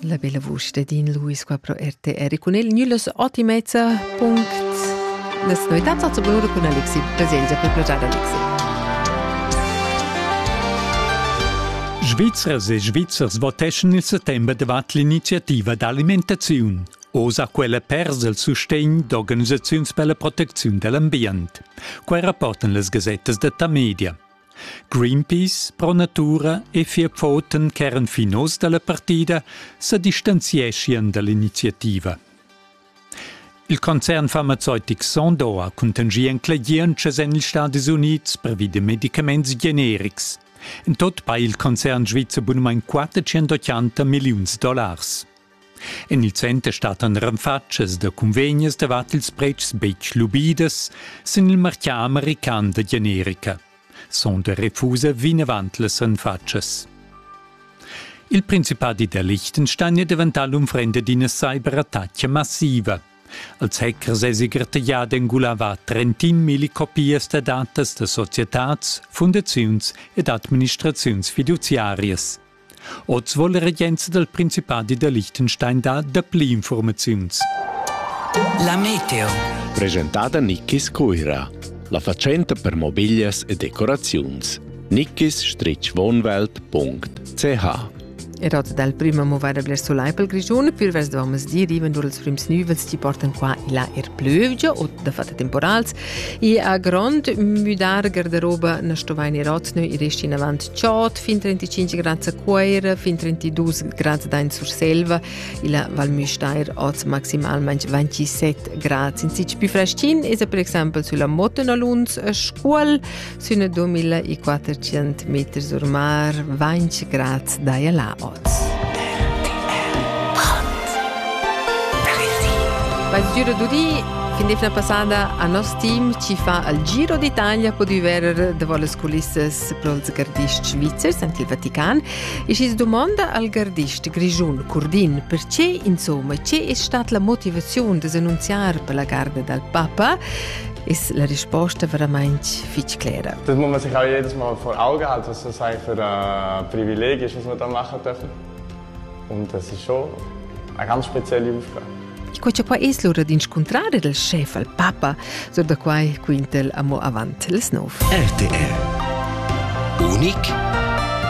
La bella vusch de Dean Lewis qua pro RTR cun el nullos otimezza punct Nas novitats a Zubur cun Alexi Baselgia per progiar Alexi. Svizzers e Svizzers voteschan il settembre davat l'iniziativa d'alimentaziun. Osa quella pers el sustegn d'organisaziuns per la protecziun dell'ambient. Quai rapportan las gazettas da Tamedia. Greenpeace pro natura e fia pfoten ch'eran fin oz dalla partida sa distanzieschien dall'iniziativa. Il concern farmazeutic Sondor ha contingì enclegientschas en ils Stadis Unids previ da medicaments generics. En tot pa il concern svizzer bunumain 480 milliuns dollars. En il center stattan renfatschas da cunvegnas davart ils pretschs betg lubidas sin il martgà american da generica. Sonda refusa vinavant las renfatschas. Il Principadi da Liechtenstein è daventà l'unfrenda d'ina cyberattacca massiva. Als hackers èsi grattaglià d'engular trentin milli copias da datas da societads, fundaziuns ed administraziuns fiduziarias. Oz wohl der Regenza del Principati de Liechtenstein da dapli informaziuns. La meteo. Presentada Nickis Cuira. La fatschenta per mobiglias e decoraziuns. nickis-wohnwelt.ch Er hat dal prima movada bler solai pel Grischun, pür vers domas di riven dur els prims nüvels ti portan qua e là er plövgia o da fatta temporals e a grond müdar gardaroba na stovain er otnö e resti in avant Chod fin 35 grads a Cuera, fin 32 grads da Surselva, illa Val Müstair oz maximalmain 27 grads. In sitg più freschin es per exempel sulla Motenalunz a Scuol, sün 2400 meter sur mar, 20 grads daia la oz. Vai giro d'udì Fin defna passada a nos team ci fa al Giro d'Italia po di verer de voles culissas sepronza gardists svizzers en il Vatican e schi's domanda al gardist grischun Curdin perche insomma che è stata la motivazione da annunziar per la garda dal Papa ist la risposta veramente fitch clara. Das muss man sich auch jedes Mal vor Augen halten, was das eigentlich für ein Privileg ist, was man da machen dürfen. Und das ist schon eine ganz spezielle Aufgabe. Quei che quai es lura d'inscuntrar ed il schef al papa, sur da quai quintel amo avant les nov. RTR. Unic